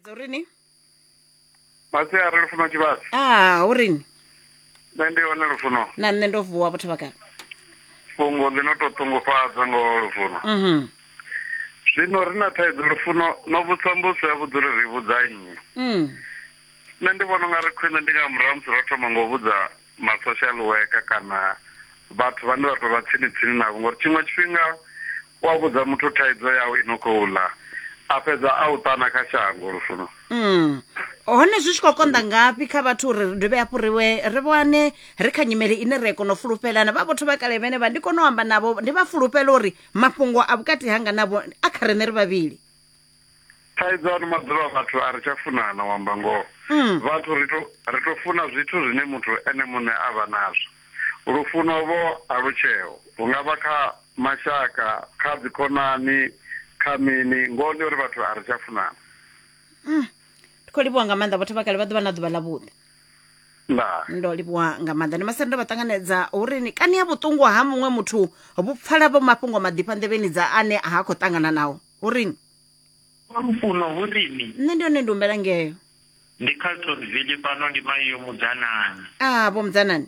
Dzo ri ni? masiari lufuno tshivhasi Ah, uri ni? nṋe ndi hone lufuno Na nṋe ndo vuwa vhathu vha kale. fhungo ḽi no to ṱungufhadza ngo lufuno Mhm. zwino ri na thaidzo lufuno no vhudza mbuso ya vhudza uri ri vhudza nnyi Mm. nṋe ndi vhona unga ri khwine ndi nga murahu musi ro thoma ngo vhudza ma social worker kana vhathu vhane vha to vha tsini tsini navho ngori tshiṅwe tshifhinga u a vhudza muthu thaidzo yau i no khou ḽa a fhedza a u ṱana kha shango lufuno mm. hone zwi tshi khou konḓa ngafhi kha vhathu uri ri dovhe hafhu ri we ri vhane ri kha nyimele ine ri kona u fulufhelana vha vhotho vha kale vhene vha ndi kone u amba navho ndi vha fulufhela uri mafhungo a vhukati hanga navho a kha riṋe ri vhavhili thaidzo ano maḓuvha vhathu a ri tsha funana u amba ngoho mm. vhathu ri to ri to funa zwithu zwine muthu ene muṋe a vha nazwo lufuno vho a lu tsheo hu nga vha kha mashaka kha dzikhonani kha mini ngoho ndi uri vhathu a ri tsha funana mm. ndi khou livhuwa nga maanḓa vhathu vha kale vha ḓuvha na ḓuvha ḽa vhuḓi ndo livhuwa nga maanḓa ndi masere ndo vha ṱanganedza uri ni kani ya vhuṱungu ha muṅwe muthu vhu pfala vho mafhungo maḓifha nḓevheni dza ane ha khou ṱangana nawo hu rini Kwa lufuno hu rini nṋe ndi hone ndi humbela ngeo ndi carltonville fhano ndi mai yo mudzanani a vho mudzanani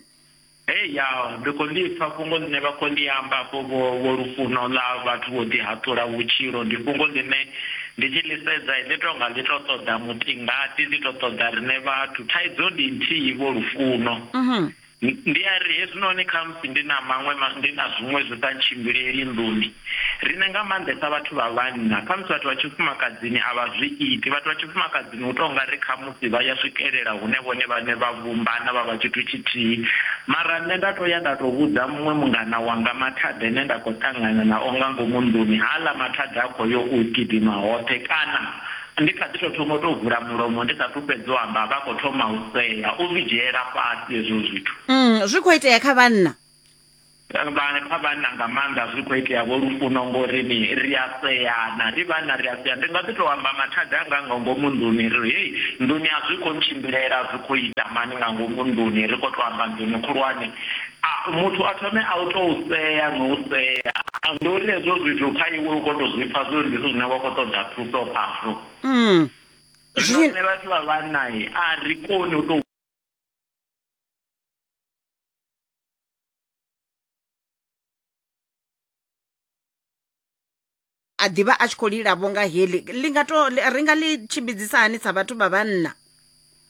hei ya ndi khou ḽi pfa fhungo ḽine vha khou ḽi amba afho vho vho lufuno ḽa vhathu vho ḓihaṱula vhutshilo ndi fhungo ḽine ndi tshi ḽi sedza ḽi tou nga ḽi tou ṱoḓa mutingati ḽi tou ṱoḓa riṋe vhathu thaidzo ndi nthihi vho lufuno Mhm. Ndi a ri, Hezwinoni khamusi ndi na maṅwe ma, ndi na zwiṅwe zwi sa ntshimbileli nḓuni. Riṋe nga maanḓesa vhathu vha vhanna, khamusi vhathu vha tshifumakadzini a vha zwi iti. Vhathu vha tshifumakadzini hu tou nga ri khamusi vha ya swikelela hune vhone vhaṋe vha vhumbana vha vha tshithu tshithihi. Mara nṋe nda tou ya nda tou vhudza muṅwe mungana wanga mathada ane nda khou ṱangana nao nga ngomu nḓuni, haaḽa mathada a khou yo u gidima hoṱhe, kana, Ndi kha ḓi tou thoma u tou vula mulomo ndi sathu fhedza u amba vha khou thoma u sea. U zwi dzhiela fhasi hezwo zwithu. Mm, zwi khou itea kha vhanna? Vha, kha vhanna nga maanḓa zwi khou itea vho Lufuno ngori ni ri a seana, ri vhanna ri a sea. Ndi nga ḓi tou amba mathada anga nga ngomu nḓuni ri hei nḓuni a zwi khou ntshimbilela zwi khou ita mani nga ngomu nḓuni ri khou tou amba nḓuni khulwane. A, muthu a thome a u tou sea no u sea. A, ndi uri hezwo zwithu kha iwe u khou tou zwi pfa zwi uri ndi zwithu zwine wa khou ṱoḓa thuso khazwo. Mm. Zwino riṋe vhathu vha vhanna a ri koni u tou. a ḓivha a tshi khou lila vho nga heḽi ḽi nga to ri nga ḽi tshimbidzisa hani sa vhathu vha vhanna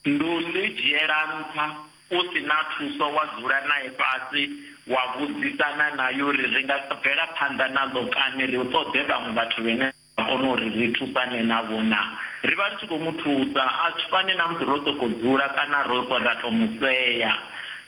ndi u ḽi dzhiela nṱha u si na thuso wa dzula nae fhasi wa vhudzisana naye uri ri nga bvela phanḓa naḽo kani ri ṱoḓe vhaṅwe vhathu vhene a kona uri ri thusane navho na ri vha ri tshi khou mu thusa a tshi fani na musi ro sokou dzula kana ro ra tou mu sea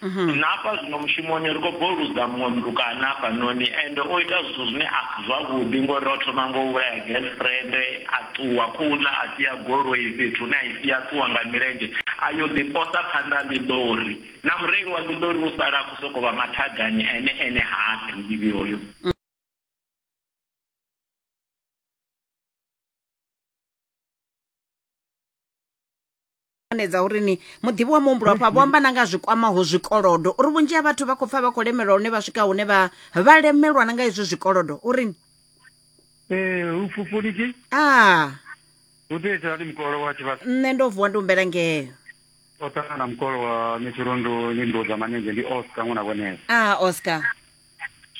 Mhm. na hafha zwino mushumoni ri khou boludza muṅwe mutukana hafhanoni ende o ita zwithu zwine a si zwavhuḓi ngori o thoma ngo vhulaya girlfriend a ṱuwa khouḽa a sia goloi fhethu hune a i sia ṱuwa nga milenzhe a yo ḓiposa phanḓa a ḽiḓori na mureili wa ḽiḓori u sala a khou sokou vha mathadani ene ene ha a ḓivhi hoyo ṱanganedza uri ni muḓivhi wa muhumbulo afha vho amba na nga zwi kwamaho zwikolodo uri vhunzhi ha vhathu vha khou pfa vha khou lemelwa hune vha swika hune vha vha lemelwa na nga hezwi zwikolodo uri ni Eh, hu fhufhuli ki? ah Hu tea ita hani mukolo wa tshivhasa? nṋe ndo vuwa ndi humbela ngeo O ṱangana mukolo wa Metshurondo ndi Ndoza Manenzhe ndi Oscar ṅwana vhonela. ah oscar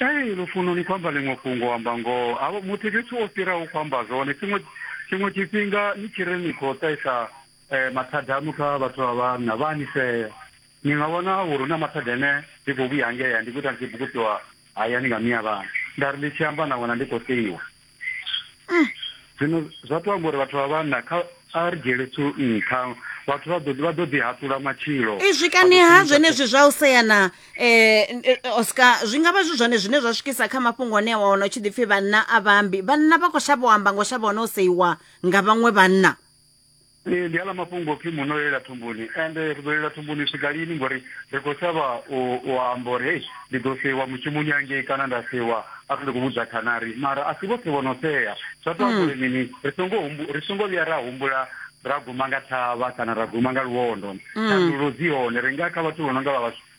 Ee, lufuno ni khou amba ḽiṅwe fhungo u amba ngoho havho muthu fhethu wo fhiraho khou amba zwone tshiṅwe tshiṅwe tshifhinga ni tshi ri ni khou ṱaisa um mathada aṋu kha vhathu vha vhanna vha ni sea ni nga vhona uri hu na mathada ane ndi khou vhuya ngea ndi khou ita ndi tshi bukutsiwa hayani nga miya vhana nda ri ndi tshi amba na wena ndi khou seiwa zwino zwa to amba uri vhathu vha vhanna kha a ri dzhiele thu nṱha vhathu vha ḓo vha ḓo ḓi haṱula matshilo izwi kani ha zwenezwi zwa u sea na um oscar zwi nga vha zwi zwone zwine zwa swikisa kha mafhungo ane wa wana u tshi ḓi pfhi vhanna a vhambi vhanna vha khou shavha u amba ngo shavha hone u seiwa nga vhaṅwe vhanna Ee, ndi aḽa mafhungo opfi muno lela thumbuni and ri ḓo lela thumbuni u swika lini ngori ri khou shavha u amba uri hei ndi ḓo seiwa mushumoni angei kana nda seiwa arali ndi khou vhudza khanari mara a si vhoṱhe vho no sea zwa to amba uri mini ri songo ri songo vhuya ra humbula ra guma nga thavha kana ra guma nga luwondo thandululo dzi hone ri nga kha vhathu vho no nga vha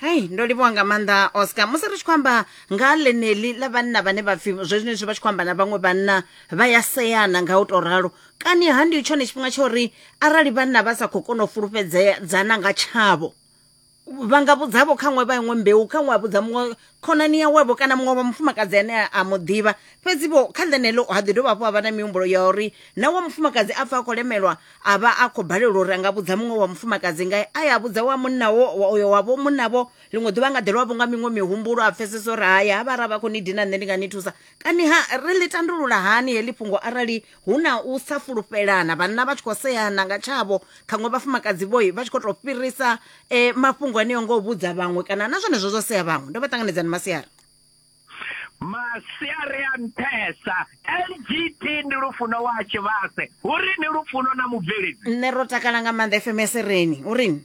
hei ndo livhuwa nga maanḓa oscar musi ri tshi khou amba nga ha ḽeneḽi ḽa vhanna vhane vha pfhi zwenezwi vha tshi khou amba na vhaṅwe vhanna vha ya seana nga u tou ralo kani ha ndi tshone tshifhinga tsha uri arali vhanna vha sa khou kona u fulufhedzea dzana nga tshavho vha nga vhudzavho kha ṅwe vha iṅwe mbeu kha ṅwe a vhudza muṅwe khonani yawevho kana muṅwe wa mufumakadzi ane a- a mu ḓivha fhedzi vho kha ḽeneḽo ha ḓi dovha hafhu ha vha na mihumbulo ya uri na wa mufumakadzi a pfa a khou lemelwa a vha a khou balelwa uri a nga vhudza muṅwe wa mufumakadzi ngae a ya vhudza wa munnawo wa- uyo wavho munnavho ḽiṅwe ḓuvha a nga ḓelwa vho nga miṅwe mihumbulo a pfesesa uri haya ha vha ra vha khou ni dina nṋe ndi nga ni thusa kani ha ri ḽi tandulula hani heḽi fhungo arali hu na u sa fulufhelana vhanna vha tshi khou seana nga tshavho khaṅwe vhafumakadzi vhoi vha tshi khou tou fhirisa eh, mafhungo aneo ngo vhudza vhaṅwe kana na zwenezwo zwo sea vhaṅwe ndo vha ṱanganedzani masiari masiari a nṱhesa lgt ndi lufuno wa tshivhase uri ni lufuno na mubveledzi nṋe ro takala nga maanḓa fms reni urini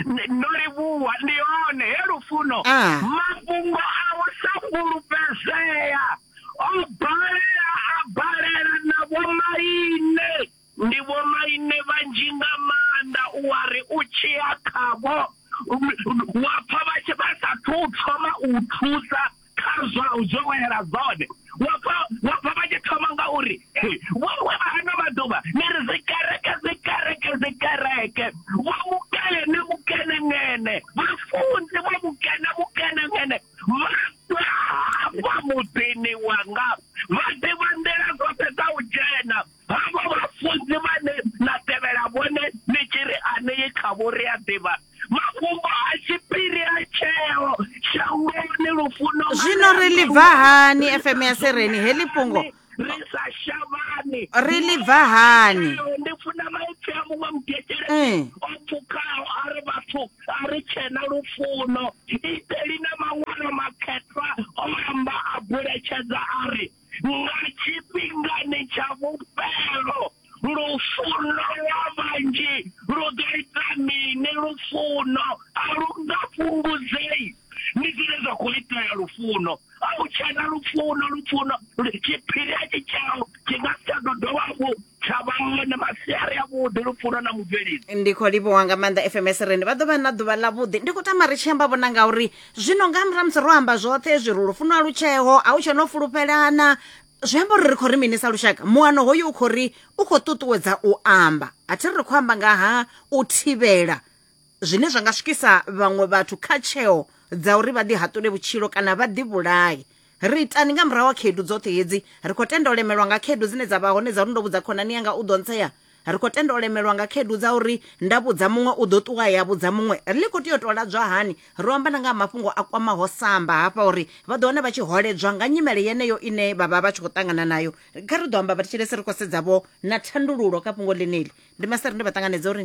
Ndi- ndo livhuwa ndi hone he lufuno Ah. mafhungo a u sa fhulufhedzea o balela a balela na vhomaine ndi vhomaine vhanzhi nga maanḓa u wa ri u tshiya khavho wa pfa vha tshi vha sa thu thoma u thusa kha zwa u dzowela dzone wa pfa wa pfa vha tshi thoma nga uri vhowe vha ano maḓuvha ni ri dzikereke dzikereke dzikereke vha mukene mukenengene vhafunzi vha mukene mukenengene vha hafha muḓini wanga vha ḓivha nḓila dzoṱhe dza u dzhena Havha vhafunzi vhane na tevhela vhone ni tshi ri anei khavho ri a ḓivha mafhungo a tshiphiri a tsheo shangoni lufuno zwino ri ḽi bva hani fm ya sereni heḽi fhungo ri sa shavhani ri ḽi bva hani ndi funa maipfi a muṅwe mugekele eh. o pfukaho a ri vhathu a ri tshena lufuno iteli na maṅwalo makhethwa o amba a buletshedza a ri nga tshifhingani tsha vhufhelo lufuno lwa vhanzhi lu ḓo ita mini lufuno a lu nga fhungudzei ndi zwine zwa khou itea lufuno a u tshena lufuno lufuno tshiphiri a tshi tshao tshi nga si tsha ḓo dovha hafhu tsha vha hone masiari a vhuḓi lupfuno na mubveledzi ndi khou livhuwa nga maanḓa fms rende vha ḓo vha na ḓuvha ḽavhuḓi ndi khou tama ri tshi amba vhona ngauri zwino nga murahu musi ro amba zwoṱhe hezwi ri lufuno a lutsheo a hu tshe no fulufhelana zwi amba uri ri khou ri mini sa lushaka muano hoyo u khou ri u khou ṱuṱuwedza u amba a thi ri ri khou amba nga ha u thivhela zwine zwa nga swikisa vhaṅwe vhathu kha tsheo dza uri vha ḓi haṱule vhutshilo kana vha ḓi vhulaye ri itani nga murahu wa khaedu dzoṱhe hedzi ri khou tenda u lemelwa nga khaedu dzine dza vha hone dza uri ndo vhudza khonani yanga u ḓo ntsea ri khou tenda u lemelwa nga khaedu dza uri nda vhudza muṅwe u ḓo ṱuwa ya vhudza muṅwe ri ḽi khou tea u tou ladzwa hani ro amba na nga ha mafhungo a kwamaho samba hafha uri vha ḓo wana vha tshi holedzwa nga nyimele yeneyo ine vha vha vha tshi khou ṱangana nayo kha ri ḓo amba vhathetshelesi ri khou sedzavho na thandululo kha fhungo ḽeneli ndi maseri ndi vha ṱanganedza uri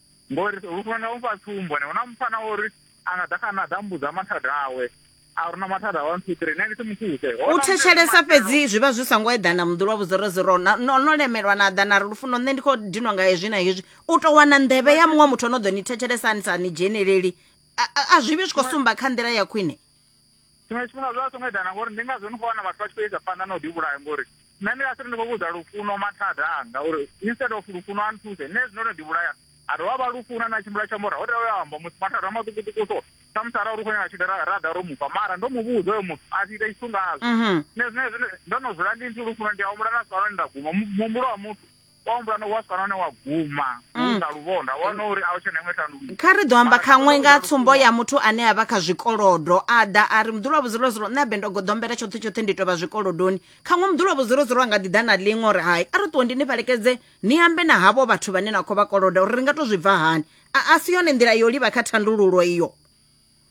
Ngori hu funa na u fha tsumbo, hu na mufana o ri a nga ḓa kha nṋe a ḓa a mbudza mathada awe a uri na mathada one two three nṋe ndi si mu thuse. U thetshelesa fhedzi zwi vha zwi so ngo eḓana muḓi lwa vhuzorozoro na no no lemelwa na ḓa na ri lufuno nṋe ndi khou dinwa nga hezwi na hezwi u tou wana nḓevhe ya muṅwe muthu o no ḓo ni thetshelesa a ni sa ni dzheneleli a a- a zwi vhi zwi khou sumba kha nḓila ya khwine tshiṅwe tshifhinga zwi vha songo eḓana ngori ndi ngazwo ni khou wana vhathu vha tshi khou isa phanḓa na u ḓivhulaha ngori nṋe ndi nga si ri ndi khou vhudza lufuno mathada anga uri instead of lufuno a nthuse nṋe zwino no ḓivhulaya a dovha vha lufuna na tshimbila tsha mora ho tea uya amba muthu mathada a maṱukuṱuku so samusi ara uri u khou nyanga tshida ra ḓa ro mufha mara ndo mu vhudza oyo muthu a si ita tshithu ngazwo mhm. nṋe zwine zwine ndo no dzula ndi nthu lufuno ndi a humbula na sikaloni nda guma muhumbulo wa muthu Wa humbula no wa swika nahone wa guma hu mm. nga luvhondo a wana uri a u tshe na iṅwe thandululo kha ri ḓo amba khaṅwe nga tsumbo ya muthu ane a vha kha zwikolodo a ḓa a ri muḓulu wa vhudzulozulu nṋe abe ndo goḓombela tshoṱhe tshoṱhe ndi tovha zwikolodoni khaṅwe muḓulu wa vhudzulozulu a nga ḓi ḓa na ḽiṅwe uri hai a ri ṱuwe ndi ni fhelekedze ni ambe na havho vhathu vhane na khou vha koloda uri ri nga to zwi bva hani a si yone nḓila yo livha kha thandululo iyo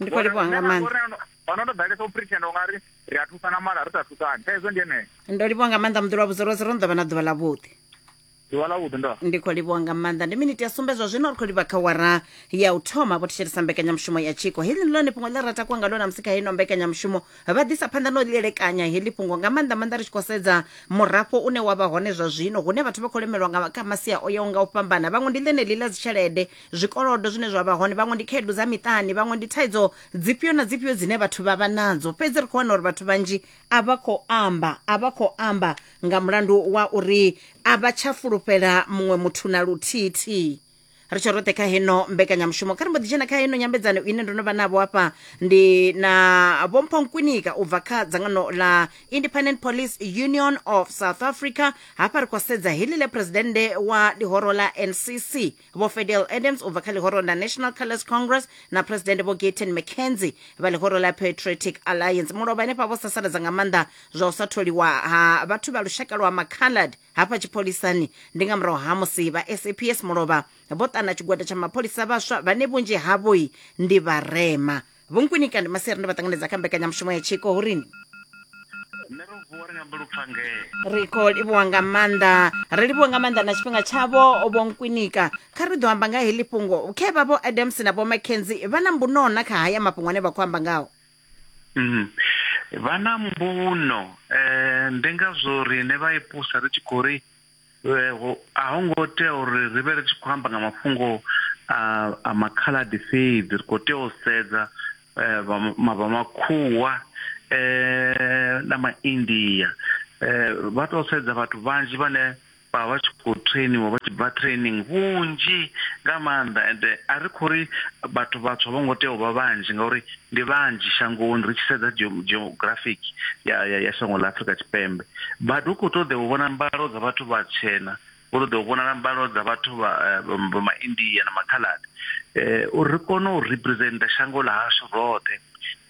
ndi khou livhuwa nga maanḓa ono ndo ḓalesa u pretender u nga ri ri a thusana mara ri sa thusani thaidzo ndi yeneyo ndo livhuwa nga maanḓa muḓi lwa vhudzorozi ro no ḓovha na ḓuvha ḽa vhuḓi ḓuvha ḽa vhuḓi ndo ndi khou livhuwa nga maanḓa ndi miniti ya sumbedzwa zwino ri khou livha kha wara ya u thoma vho thetshelesa mbekanyamushumo ya tshiko heḽi ndi ḽone fhungo ḽe ra takuwa ngalo na musi kha ino mbekanyamushumo vha ḓisa phanḓa no ḽielekanya heḽi fhungo nga maanḓa maanḓa ri tshi khou sedza murafho une wa vha hone zwa zwino hune vhathu vha khou lemelwa nga kha masia o yaho nga u fhambana vhaṅwe ndi ḽeneḽi ḽa dzitshelede zwikolodo zwine zwa vha hone vhaṅwe ndi khaedu dza miṱani vhaṅwe ndi thaidzo dzifhio na dzifhio dzine vhathu vha vha nadzo fhedzi ri khou wana uri vhathu vhanzhi a vha khou amba a vha khou amba nga mulandu wa uri a vha tsha fulufhela muṅwe muthu na luthithihi ri tshe roṱhe kha heno mbekanyamushumo kha ri mbo ḓi dzhena kha heno nyambedzano ine ndo no vha navho afha ndi na vhompho nkwinika u bva kha dzangano la independent police union of south africa hafha ri khou sedza heḽi ḽe presidennde wa ḽihoro ḽa ncc Vho Fedell Adams u bva kha ḽihoro ḽa National Colours Congress na Phuresidennde Vho Gayton McKenzie vha ḽihoro ḽa Patriotic Alliance mulovha henefha vho sasaladza nga maanḓa zwa u sa tholiwa ha vhathu vha lushaka lwa Macoloured hafha tshipholisani ndi nga murahu ha musi vha SAPS mulovha vho ṱana tshigwada tsha mapholisa vhaswa vhane vhunzhi havhoi ndi vharema. vho nkunika ndi maseri ndi vha ṱanganedza kha mbekanyamushumo ya tshiko hu rini nṋe ro vuwa ri nyambe lupfangee ri khou livhuwa nga maanḓa ri livhuwa nga maanḓa na tshifhinga tshavho vho nkwinika kha ri ḓo amba nga heḽi fhungo khe vha vho adams na vho mackenzie vha na mbuno na kha haya mafhungo ane vha khou amba ngawo Mhm. vha na mbuno um ndi ngazwo riṋe vha ipusa ri tshi khou ri A ho ngo tea uri ri vhe ri tshi khou amba nga mafhungo a a Makhaladi fhedzi, ri khou tea u sedza vha ma vha Makhuwa na Maindia. Vha tou sedza vhathu vhanzhi vhane vha vha tshi khou trainiwa vha tshi bva training vhunzhi nga maanḓa ende a ri khou ri vhathu vhatswu a vho ngo tea u vha vhanzhi ngauri ndi vhanzhi shangoni ri tshi sedza geographic ya, ya, ya shango ḽa afurika tshipembe but hu khou ṱoḓea u vhona mbalo dza vhathu vhatshena hu ṱoḓea u vhonala mbalo dza vhathu vha eh, maindia na makhaladi eh, uri ri kone u representa shango ḽa hashu roṱhe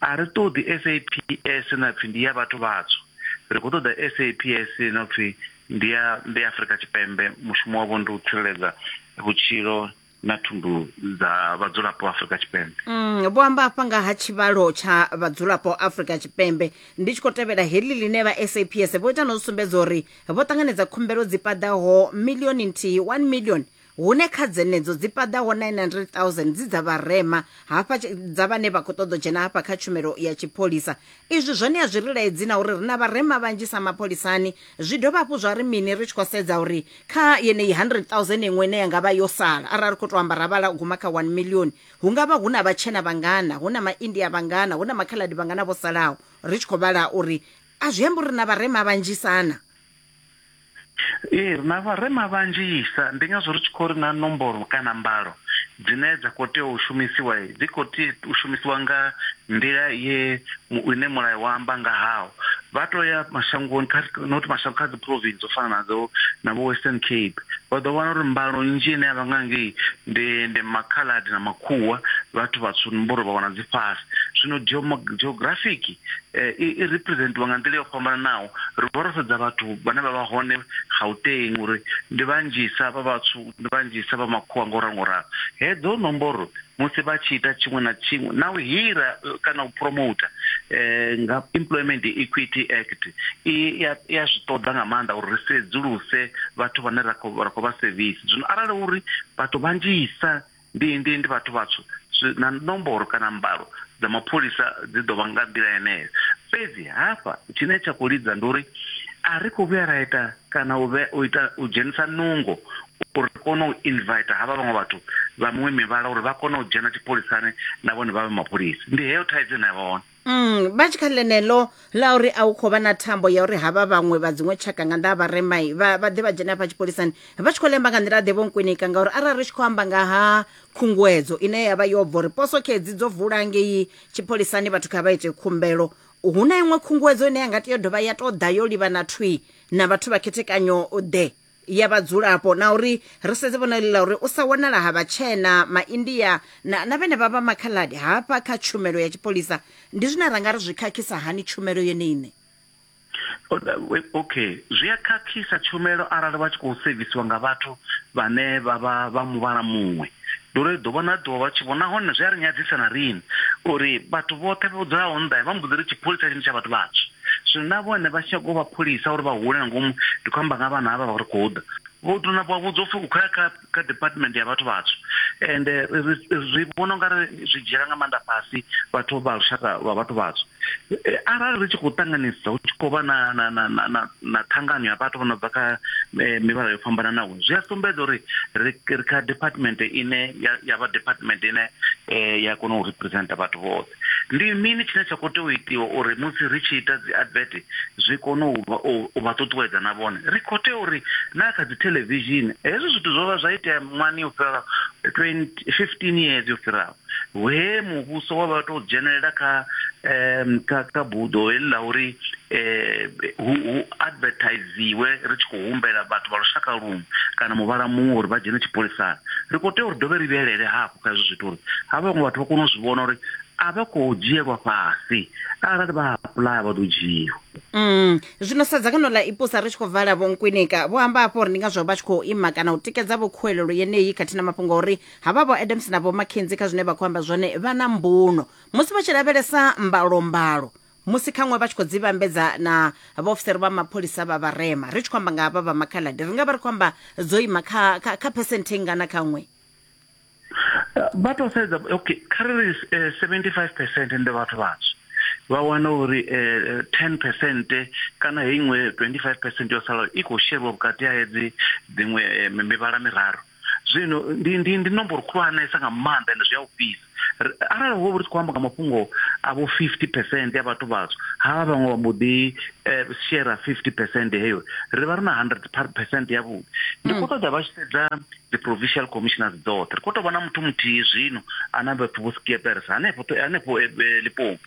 a ri ṱoḓi saps na pfhi ndi ya vhathu vhatswu ri khou ṱoḓa saps no pfhi ndi ya ndi ya afurika tshipembe mushumo wavho ndi u tsireledza vhutshilo na thundu dza vhadzulapo Afrika Tshipembe. Mm, vho amba afha nga ha tshivhalo tsha vhadzulapo Afrika Tshipembe ndi tshi khou tevhela heḽi ḽine vha SAPS vho ita na u sumbedza uri vho ṱanganedza khumbelo dzi paḓaho milioni nthihi 1 million hune kha dzenedzo dzi paḓaho 900,000 dzi dza vharema hafha dza vhane vha khou ṱoḓa u dzhena hafha kha tshumelo ya tshipholisa Izwi zwo ṋea zwi ri laedzi na uri ri na vharema vhanzhi sa mapholisani. Zwi dovha hafhu zwa ri mini ri tshi khou sedza uri kha yeneyi 100,000 iṅwe ine ya nga vha yo sala, arali ri khou tou amba ra vhala u guma kha 1 miḽioni, hu nga vha hu na vhatshena vhangana, hu na Maindia vhangana, hu na Makhaladi vhangana vho salaho? Ri tshi khou vhala uri a zwi ambi uri ri na vharema vhanzhisa na. Ee, ri na vharema vhanzhisa, ndi ngazwo ri tshi khou ri na nomboro kana mbalo dzine dza khou tea u shumisiwa dzi khou tea u shumisiwa nga nḓila ye ine mulayo wa amba nga hawo. Vha to ya mashangoni kha not mashango kha dzi province dzo fana na dzo na vho Western Cape vha ḓo wana uri mbalo nnzhi ine yavha nga ngei ndi ndi makhaḽadi na makhuwa vhathu vhatswu nomboro vha wana dzi fhasi. Zwino geographic eh, i i representiwa nga nḓila yo fhambananaho ri vha ro sedza vhathu vhane vha vha hone gauteng uri ndi vhanzhisa vha vhatswu ndi vhanzhisa vha makhuwa ngo ralo ngo ralo hedzo nomboro musi vha tshi ita tshiṅwe na tshiṅwe na u hira eh, kana u promoter eh, nga employment equity act i ya ya zwi ṱoḓa nga maanḓa uri ri sedzuluse vhathu vhane ra khou ra khou vha service zwino arali uri vhathu vhanzhisa Ndi, ndi, ndi vhathu vhatswu, zwi, na nomboro kana mbalo dza mapholisa dzi ḓo vha nga nḓila yeneyo. Fhedzi hafha tshine tsha khou lidza ndi uri a ri khou vhuya ra ita kana u, vhe, u, ita, u dzhenisa nungo uri ri kone u invita havha vhaṅwe vhathu vha miṅwe mivhala uri vha kone u dzhena tshipholisani na vhone vha vhe mapholisa. Ndi heyo thaidzo ine ya vha hone. Mm, vha tshi kha ḽeneḽo ḽa uri a u khou vha na thambo ya uri havha vhaṅwe vha dziṅwe tshaka nga nḓa ha vharemai vha vha ḓe vha dzhene hafha tshipholisani vha tshi khou lemba nga nḓila ḓe vho nkwinika ngauri arali ri tshi khou amba nga ha khunguwedzo ine ya vha yo bva uri poso khedzi dzo vula ngei tshipholisani vhathu kha vha ite khumbelo hu na iṅwe khunguwedzo ine ya nga tea u dovha ya tou ḓa yo livhana thwi na vhathu vha khethekanyo ḓe ya vhadzulapo na uri ri sedze vhona ḽi ḽa uri u sa wanala ha vhatshena maindia na, na vhenevha vha makhaladi hafha kha tshumelo ya tshipholisa ndi zwine ra nga ri zwi khakhisa hani tshumelo yone ine okay zwi a khakhisa tshumelo arali vha tshi khou sevisiwa nga vhathu vhane vha vha vha muvhala muṅwe Ndi uri ḓuvha na ḓuvha vha tshi vho nahone zwi a ri nyadzisa na riṋe uri vhathu vhoṱhe vho dzulaho nnḓa vha mbo ḓi ri tshipholisa tshine tsha vhathu vhatswu zwino na vhone vha tshi nyaga u vha pholisa uri vha hule nga ngomu ndi khou amba nga vhana havha vha ri khou ḓa vho tou na vha vhudzwa upfhi u khou ya kha kha department ya vhathu vhatswu ende ri vhona unga ri zwi dzhiela nga maanḓa fhasi vhathu vha lushaka lwa vhathu vhatswu arali ri tshi khou ṱanganisa hu tshi khou vha na na na na na ṱhangano ya vhathu vho no bva kha eh, mivhala yo fhambananaho zwi a sumbedza uri ri kha department ine ya vha department ine eh, ya kona u representa vhathu vhoṱhe ndi mini tshine tsha khou tea u itiwa uri musi ri tshi ita dzi advert zwi kone u vha ṱuṱuwedza na vhone ri khou tea uri na kha dzi television hezwi zwithu zwo vha zwa itea mwani yo fhiraho 15 years yo fhiraho he muvhuso wa vha tou dzhenelela kha um kha kha buḓo heḽi ḽa uri um hu hu advertisiwe ri tshi khou humbela vhathu vha lushaka luṅwe kana muvhala muṅwe uri vha dzhene tshipholisani ri khou tea uri dovhe ri vhuyelele hafhu kha hezwo zwithu uri ha vhaṅwe vhathu vha kone u zwi vhona uri a vha khou dzhielwa fhasi arali vha apuḽaya vha ḓo dzhiiwa Mm. Zwino sa dzangano ḽa ipusa ri tshi khou vala vho Nkwinika vho amba hafho uri ndi ngazwo vha tshi khou ima kana u tikedza vho khuwelelo yeneyi khathihi na mafhungo uri havha vho adams na vho mckenzi kha zwine vha khou amba zwone vha na mbuno musi vha tshi lavhelesa mbalombalo musi khaṅwe vha tshi khou dzi vhambedza na vhaofisiri vha mapholisa vha vharema ri tshi khou amba nga havha vha makhaladi ri nga vha ri khou amba dzo ima kha, kha, kha phesenthe ngana khaṅwe vha tou sedza okay kha ri ri eh, 75 percent ndi vhathu vhatswu vha wana uri eh, 10 percent kana hei iṅwe 25 percent yo salaho i khou sheriwa vhukati ha hedzi dziṅwe eh, mi- mivhala miraru zwino ndi ndi ndi nomboro khulwanesa nga maanḓa ende zwi a ofhisa arali ho ri tshi khou amba nga mafhungo a vho 50 percent ya vhathu vhatswu havha vhaṅwe vha mbo ḓi eh, shera 50 percent heyo ri vha ri na 100 percent yavhuḓi ndi khou ṱoḓa vha tshi sedza dzi provincial commissioners dzoṱhe ri khou tou vha na muthu muthihi zwino ana vhathu vho skieperesa hanefho to- hanefho eh, eh, lipopo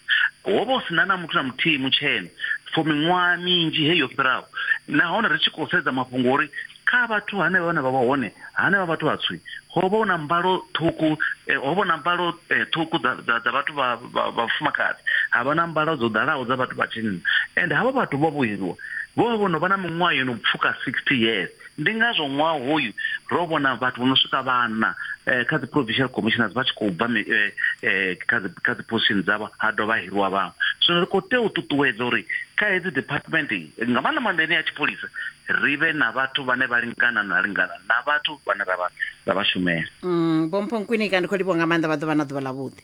ho vha hu si na na muthu na muthihi mutshena for miṅwaha minzhi heyo fhiraho nahone ri tshi khou sedza mafhungo uri kha vhathu hanevha vhane vha vha hone hanevha vhathu vhatswi ho vha na mbalo ṱhuku eh, ho vha na mbalo eh, ṱhuku dza vhathu vha vhafumakadzi ha vha na mbalo dzo ḓalaho dza vhathu vha tshinna and havha vhathu vho vhuheliwa vho vha vho no vha na miṅwaha yo no pfuka sixty years ndi ngazwo ṅwaha hoyu ro vhona vhathu vho no swika vhana eh, kha dzi provincial commissioners vha tshi khou bva kha dzi position dzavho ha dovha hiriwa vhaṅwe zwino ri khou tea u ṱuṱuwedza uri kha hedzi department iyi nga maanḓa maanḓa ine ya tshipholisa ri vhe na vhathu vhane vha lingana na lingana na vhathu vhane ra vha- ra vha shumela Mm, vhompho nkwinika ndi khou livhuwa nga maanḓa vha ḓo vha na ḓuvha ḽavhuḓi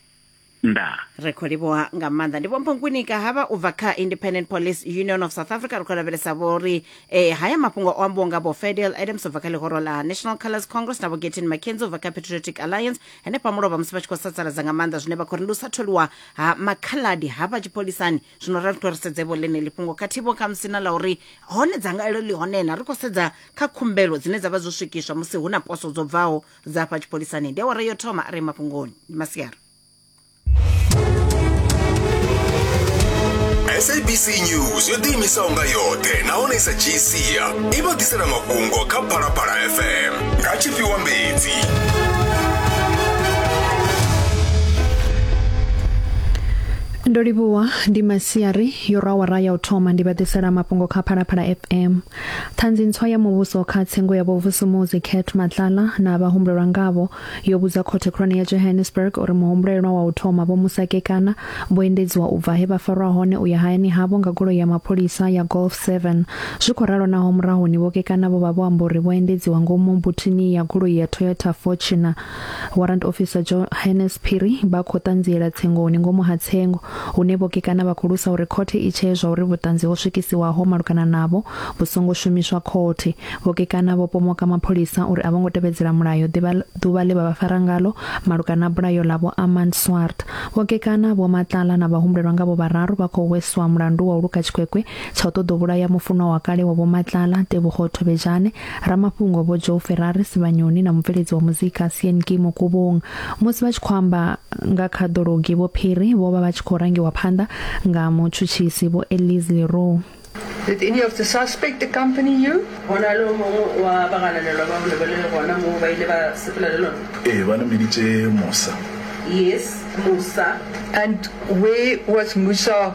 ndaa ri khou livhuwa nga maanḓa ndi vhompho nkwinika havha u bva kha independent police union of south africa ri khou lavhelesa vho ri eh, haya mafhungo o ambiwa nga vho fedel adams u bva kha ḽihoro ḽa national colors congress na vho getin mackenzie u bva kha patriotic alliance henefha mulovha musi vha tshi khou sasaladza nga maanḓa zwine vha khou ri ndi u sa tholiwa ha makhaladi hafha tshipholisani zwino ra ri to ri sedze vho ḽeneḽi fhungo khathihi vho khamusi na ḽa uri hone dzangalelo ḽi hone na ri khou sedza kha khumbelo dzine dza vha dzo swikiswa musi hu na poso dzo bvaho dza fha tshipholisani ndi awara yo thoma a re mafhungoni ndi masiari sabc news yo ḓiimisaho nga yoṱhe nahone sa dzhii sia i vha ḓisela mafhungo kha phalaphala fm nga tshifhiwa mbedzi Ndo livhuwa ndi masiari yo rwa awara ya u thoma ndi vha ḓisela mafhungo kha Phalaphala FM. Ṱhanzi ntswa ya muvhuso kha tsengo ya vhovusumuzi Cat Matlala na vha humbulelwa ngavho yo vhudza khothe khulwane ya Johannesburg uri muhumbulelwa wa u thoma vho musakekana vho endedziwa u bva he vha farwa hone u ya hayani havho nga goloi ya mapholisa ya Golf 7. Zwi khou ralo naho murahuni vho kekana vho vha vho amba uri vho endedziwa ngomu buthini ya goloi ya Toyota Fortuner Warrant Officer Johannes Phiri vha khou ṱanziela tsengoni ngomu ha tsengo hune vhokekana vha khou lusa uri khothe i tshee zwa uri vhuṱanzi ho swikisiwaho malugana navho vhu songo shumiswa khothe. Vhokekana vho pomoka mapholisa uri a vho ngo tevhedzela mulayo ḓuvha ḽe vha vha fara ngalo malugana na bulayo ḽa Vho Armand Swart. Vhokekana Vho Matlala na vhahumbulelwa ngavho vhararu vha khou hweswa mulandu wa u luka tshikwekwe tsha u ṱoḓa u vhulaya mufunwa wa kale wa Vho Matlala, Tebogo Thobejane, Ramafhungo Vho Joe Ferrari Sivhanyoni na mubveledzi wa muzika Sean Ki Mukubung musi vha tshi khou amba nga kha ḓologi Vho Phiri vho vha vha tshi khou rangiwa phanḓa nga mutshutshisi Vho Elise Leroux. Did any of the suspect accompany you? Go na le o mongwe wa bagananelwa ba bone ba le gona moo ba ile ba sepela le lona? Ee, ba nameditše Musa. Yes, Musa. And where was Musa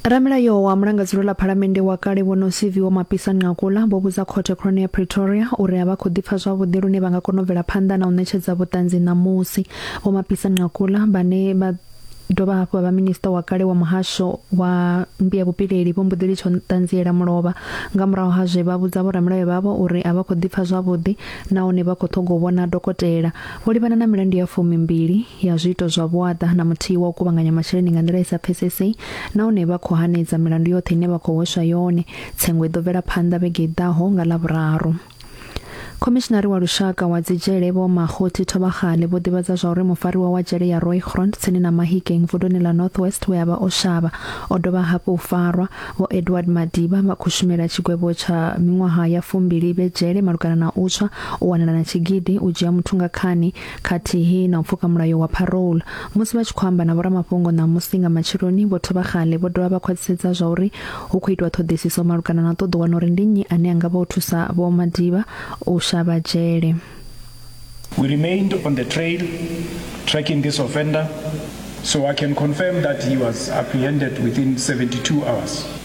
Ramilayo wa mulangadzulo ḽa phalamennde wa kale vho no CV wa Mapisa Nqakula vho vhudza khothe khulwane ya Pretoria uri a vha khou ḓipfa zwavhuḓi lune vha nga kona u bvela phanḓa na u ṋetshedza vhuṱanzi ṋamusi. Vho Mapisa Nqakula vhane vha dovha hafhu vha vha minista wa kale wa muhasho wa mbia vhupileli vho mbuḓeli tsho ṱanziela mulovha nga murahu ha zwe vha vhudza vho ramulayo vhavho uri a vha khou ḓipfa zwavhuḓi nahone vha khou ṱhoga u vhona dokotela vho livhana na milandu ya fumi mbili ya zwiito zwa vhuaḓa na muthihi wa u kuvhanganya masheleni nga nḓila i sa pfesesei nahone vha khou hanedza milandu yoṱhe ine vha khou hweswa yone tsengo i ḓo bvela phanḓa vhege i ḓaho nga ḽavhuraru khomishinari wa lushaka wa dzidzhele vho mahothi thovhagale vho ḓivhadza zwa uri mufariwa wa dzhele ya roygrond tsini na mahikeng vunduni ḽa northwest we a vha o shavha o dovha hafhu u farwa vho edward madiba vha khou shumela tshigwevho tsha miṅwaha ya fumbili vhe dzhele malugana na u tswa u wanala na tshigidi u dzhia muthu nga khani khathihi na u pfuka mulayo wa parole. Musi vha tshi khou amba na vhoramafhungo ṋamusi nga matsheloni, vho Thoba Kgale vho dovha vha khwaṱhisedza zwa uri hu khou itwa ṱhoḓisiso malugana na u ṱoḓa u wana uri ndi nnyi ane a nga vha o thusa Vho Madiba u shavha dzhele. We remained on the trail tracking this offender so I can confirm that he was apprehended within 72 hours.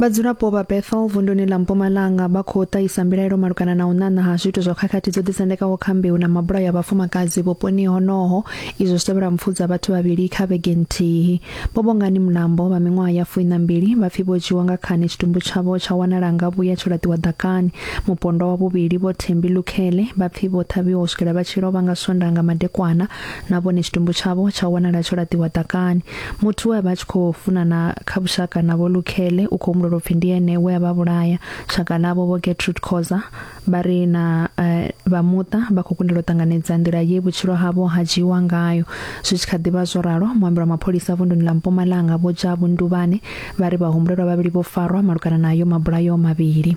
Vhadzulapo vha Bethel vunduni ḽa Mpumalanga vha khou ṱahisa mbilaelo malugana na u ṋaṋa ha zwiito zwa khakhathi dzo ḓisendekaho kha mbeu na mabulayo a vhafumakadzi vhuponi honoho izwo zwi tevhela mpfu dza vhathu vhavhili kha vhege nthihi. Vho Bongani Mulambo vha miṅwaha ya fuwi na mbili vha pfi vho dzhiwa nga khani tshitumbu tshavho tsha wanala nga vhuya tsho laṱiwa ḓakani. Mupondwa wa vhuvhili Vho Thembi Lukhele vha pfi vho ṱhavhiwa u swikela vha tshi lovha nga Swondaha nga madekwana na vhone tshitumbu tshavho tsha wanala tsho laṱiwa ḓakani muthu we a vha a tshi khou funana kha vhushaka na vho lukhele u khou humbula upfi ndi ene we a vha vhulaya shaka ḽavho vho getrude khoza vha ri na uh, vha muṱa vha khou kundelwa u ṱanganedza nḓila ye vhutshilo havho ha dzhiiwa ngayo zwi tshi kha ḓivha zwo ralo muambelo wa mapholisa vunduni ḽa mpumalanga vho dzha vhunduvhane vha ri vhahumbulelwa vhavhili vho farwa malugana nayo mabulayo mavhili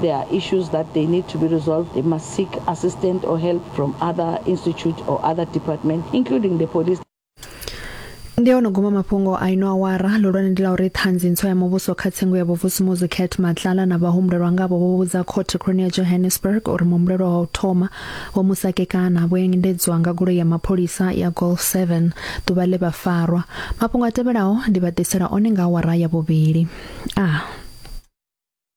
There are issues that they need to be resolved. They must seek assistance or help from other institute or other department, including the police. ndi ono guma mafhungo a ino awara lulwane ndi la uri ṱhanzi ntswa ya muvhuso kha tsengo ya vhuvusumuzi cat matlala na vhahumbulelwa ngavho vho vhudza khothe khulwane ya johannesburg uri muhumbulelwa wa u thoma vho musakekana vho endedzwa nga goloi ya mapholisa ya golf 7 ḓuvha ḽe vha farwa mafhungo a tevhelaho ndi vha ḓisela one nga awara ya vhuvhili a ah.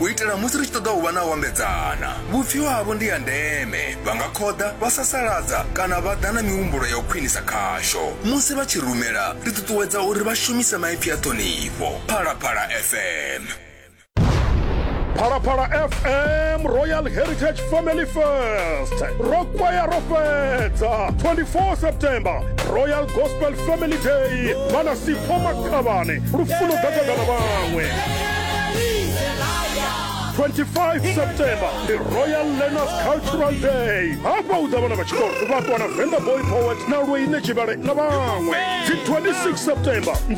u itela musi ri tshi ṱoḓa u vha na u ambedzana vhupfiwa havho ndi ya ndeme vha nga khoḓa vha sasaladza kana vha ḓa na mihumbulo ya u khwinisa khasho musi vha tshi rumela ri ṱuṱuwedza uri vha shumise maipfi a ṱhonifho phalaphala fm phalaphala fm royal heritage family first ro kwaya ro fhedza 24 september royal gospel family day mana sipho khavhane lufuno gagagana vhaṅwe 25 september ndi royal learners cultural day hafha u ḓa vhana vha tshikolo vha ṱwana venda boy poet na lweine tshivhale na vhaṅwe dzi 26 september ndi